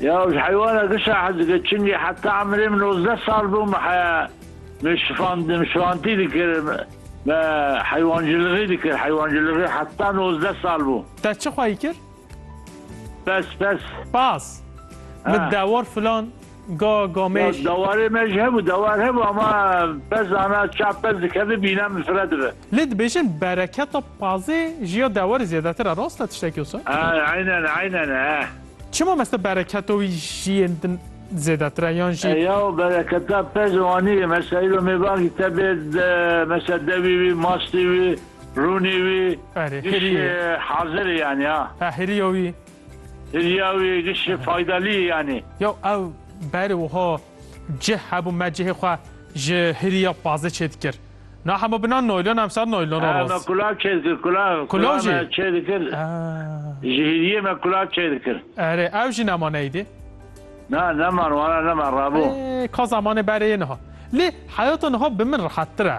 Ya ji heywana gişa hez dike çingê heta emirê min nozdeh sal bû me heya me şifandim şifantî dikir me heywancilixî dikir heywancilixî heta nozdeh sal bû. Te çi xwayî kir? Pes pes. Pas. Min dewar filan. Ga gamêş. Dawarê me ji hebû dawar hebû ama pez zana çap pez dikeve bîna min fire dibe. Lê dibêjin bereketa pazê ji ya dawarê zêdetir e rast e tiştekî wisa? Eynen eynen e. Çima meste bereketa wî ji yên din zêdetir e yan jî? Ya bereketa pez wanî ye mesela îro mêvankî te bê mesela dewî wî mastî wî rûnî wî Erê, hêrî jî ye. hazir e yanî ha. He hêrî ya wî. Hiriya wî êdî şê faydelî yanî. Yo ew berê wiha cih hebû me cihê xwe ji hiriya pazê çê dikir. Na hema bina noylon em sar noylona roz. Me kulav çê dikir kulav. Kulav jî? Kulav me çê dikir. Ji hiriyê me kulav çê dikir. Erê ew jî neman êdî? Na neman wana neman rabû. Ê ka zemanê berê yê niha. Lê heyata niha bi min rehettir e.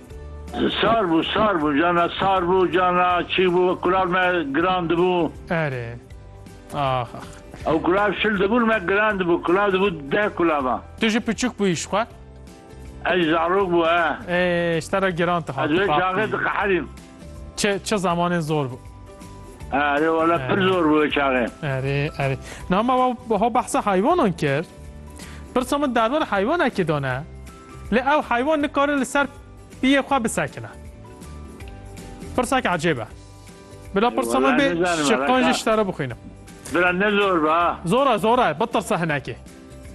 Sar bû, sar bû cana, sar bû cana, çî bû, kural me giran dibû. Erê, ax ax. Ew kural şil dibûn me giran dibû, kural dibû deh kulavan. Tu jî piçûk bûyî ji xwe? Ez jî zarok bû e. Ê, ji te re giran dihat. Ez wê çaxê diqeherîm. Çi, çi zamanên zor bû. Erê wele pir zor bû wê çaxê. Erê, erê. Name we ho behsa heywanan kir. Pirsa min derwere heywanekî dane. Lê ew heywan nikare li ser piyê xwe bisekine. Pirsek ecêb e. Bila pirsa me bê şiqan jî ji te re bixwînim. Bira ne zor be ha. Zor e zor e bitirse hinekê.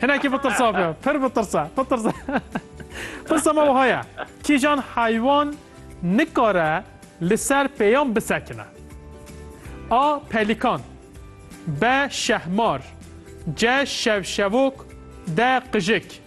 Hinekê bitirsa be pir bitirse bitirse. Pirsa me wiha ye kîjan heywan nikare li ser pêyan bisekine? A. Pelîkan B. Şehmar C. Şevşevok D. Qijik.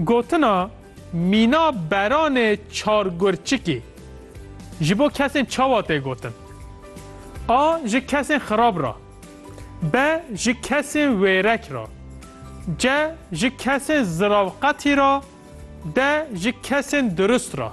Gotina mîna beranê çargurçikî ji bo kesên çawa tê gotin? A ji kesên xirab ra. B ji kesên wêrek ra. C ji kesên ziravqetî ra. D ji kesên dirust ra.